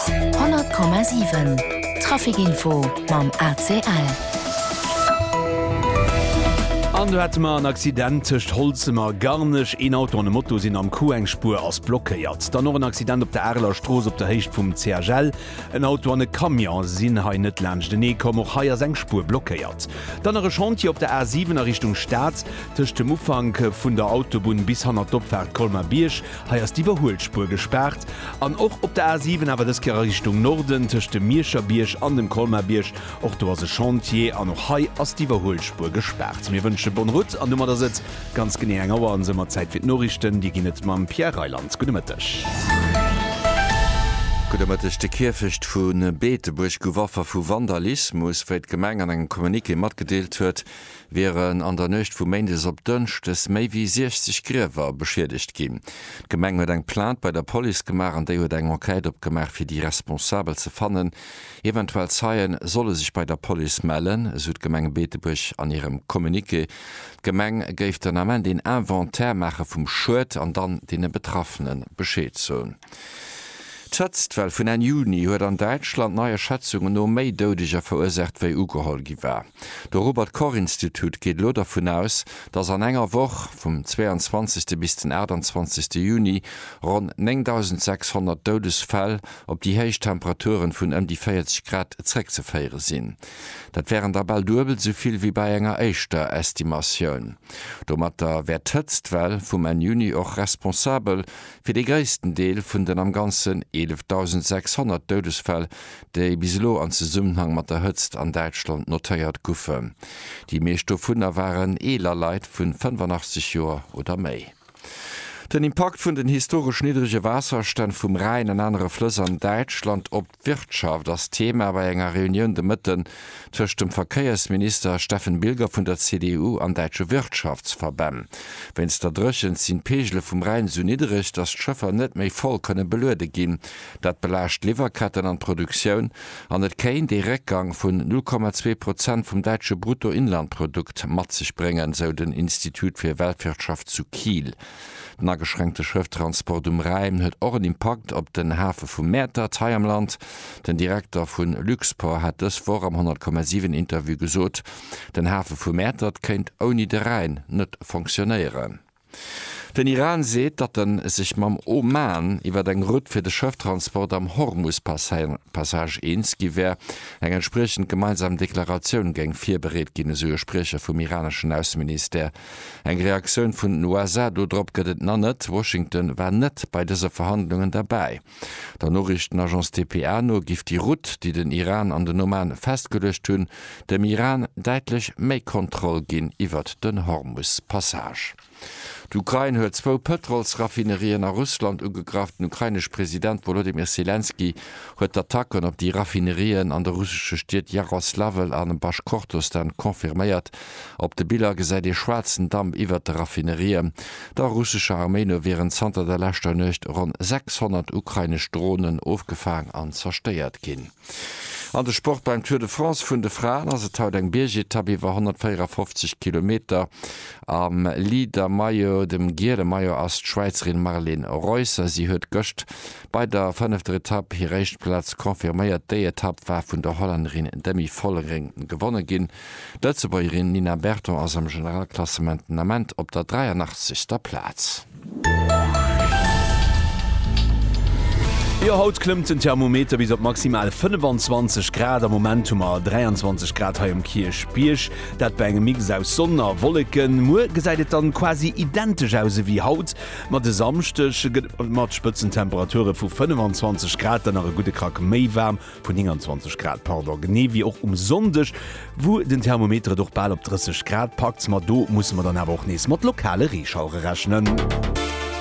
100,7 Traficinfo mam ACL. An do hate mer en Accident tëscht Holzem a Garnech. Een Auto an e Moto sinn am Coup, eng Spuer ass blockéiert. Dann och en Accident op der Areler Strooss op der Héicht vum CHL. En Auto an e Camion sinn hei net laanschtenee komm, och hei ass eng Spuer blockéiert. Dann nach e Chantier op der A7 a Richtung Stad, tëscht dem Ufank vun der Autobunn bis hanner d'Opfaart Colmer-Bierg. Hei ass d'Iwwerhuelspuer gespaart. An och op der A 7, awer dës Kéier a Richtung Norden, tëscht dem Mierscher Bierg an dem Colmer Bierg. Och do ass e Chantier an och hei ass d'Iwwerhuelspuer gespaart. Mir wënsche bonne route an domat ass et ganz genee eng Auer an esou mat Zäit fir d'Noriichten. Dir ginn et mam Pierre Reyland. Gudde Mëtteg. Gudde Mëtteg. De Kierfecht vu Beetebuerg gouf Affer vu Vandalismus, wéi d'Gemeng an engem Communiqué matgedeelt huet. wieren an der Nuecht vu Méindes op Dënschdes méi wéi 60 Griewer beschiedegt ginn. D'Gemeng huet eng Plainte bei der Police gemaach an déi huet eng Enquête opgemaach fir déi Responsabel ze fannen. Eventuell Zeien solle sech bei der Police mellen, esou d'Gemeng Beetebuerg an hirem Communiqué. D'Gemeng géif den Ament een Inventaire maache vum Schued an dann deene Betraffene Bescheed soen. D'Hëtztwell vun Enn Juni huet an Däitschland neier Schätzungen no méi Doudeger verursaacht wéi ugeholl gi war. De Robert Koch Institut geet elo dervun aus, datt an enger Woch, vum 22. bis den 28. Juni, ronn 9.600 Doudesfäll op déi héich Temperaturen vun ëm déi 40 Grad zréckzeféiere sinn. Dat wären da bal duebel esou vill wéi bei enger éischter Estimatioun. Domatter wär d'Hëtztwell vum Enn Juni och responsabel fir dee gréissten Deel vun den am Ganzen 11.600 Doudesfäll, déi bis elo an Zesummenhang mat der Hëtzt an Däitschland notéiert goufen. Déi meescht dovunner waren eeler Leit vu 85 Joer oder méi. Den Impakt vun den historesch niddrege Waasserstänn vum Rhäin an anere Flëss an Däitschland op d'Wirtschaft ass Thema bei enger Reunioun de Mëtten tëscht dem Verkéiersminister Steffen Bilger vun der CDU an däitsche Wirtschaftsverbänn. Wéinst der Dréchent sinn d'Peegele vum Rhäin sou niddreg, datt d'Schëffer net méi voll kënne beluede ginn, Dat belaascht d'Liwwerketten an d'Produktioun an et kéint ee Réckgang vun 0,2 Prozent vum däitsche Bruttoinlandprodukt mat sech bréngen, sou den Institut fir Weltwirtschaft zu Kiel. Den ageschränkte Schrëfttransport um Rhäin huet och en Impakt op den Hafe vu Mäertert hei am Land. Den Direkter vu Luxport hat dës Woch am 100,7 Interview gesot, den Hafe vu Mäertert kéint ouni de Rhäin net fonctionéieren. Den Iran seet, datt en sech mam Oman iwwer eng Rutt fir de Schëfftransport am Hormus-Passage eens gi wär. Eng entspriechend gemeinsam Deklaratioun géing virbereet ginn, esou e Spriecher vum iraneschen Ausseministère. Eng Reaktioun vun den USA dorop gëtt et nach net. Washington war net bei dëse Verhandlungen derbäi. Der Noriichtenagence dpa no giff déi Route, déi den Iran an den Oman festgeluecht hunn, dem Iran däitlech méi Kontroll ginn iwwert den Hormus-Passage. D'Ukrain huet zwou Pëtrolsraffinerien a Russland ugegraff. Den ukrainesche President Wolodymyr Selenskyj huet d'Attacken op déi Raffinerien an de russesche Stied Jaroslawl a Baschkortostan confirméiert. Op de Biller gesäit ee schwaarzen Damp iwwert de Raffinerien. Der russescher Arméi no wieren zanter der leschter Nuecht ronn 600 ukrainesch Dronen ofgefaang an zerstéiert ginn. An de Sport, Beim Tour de France vun de Fraen ass et haut eng Biergetapp iwwer 154 Kilometer. Am Leader Maillot, dem giele Maillot, ass d'Schwäizerin Marlene Reusser. Si huet gëscht bei der fënnefter Etapp hir éischt Plaz confirméiert. Déi Etapp war vun der Hollännerin Demi Vollering gewonne ginn. D'Lëtzebuergerin Nina Berton ass am Generalklassement den Ament op der 83. Plaz. Jo, haut klëmmt den Thermometer bis op maximal 25 Grad. Am Moment hu mer 23 Grad hei um Kierchbierg, dat bei engem Mix aus Sonn a Wolleken. Muer gesäit et dann quasi identesch aus ewéi haut, ma de Samschdeg gëtt et mat Spëtzentemperature vu 25 Grad dann nach e gudde Krack méi waarm. Vu 29 Grad, pardon, genee wéi och um Sonndeg, wou den Thermometer et och bal op 30 Grad packt. Ma do musse mer dann awer och nees mat lokale Reeschauere rechnen.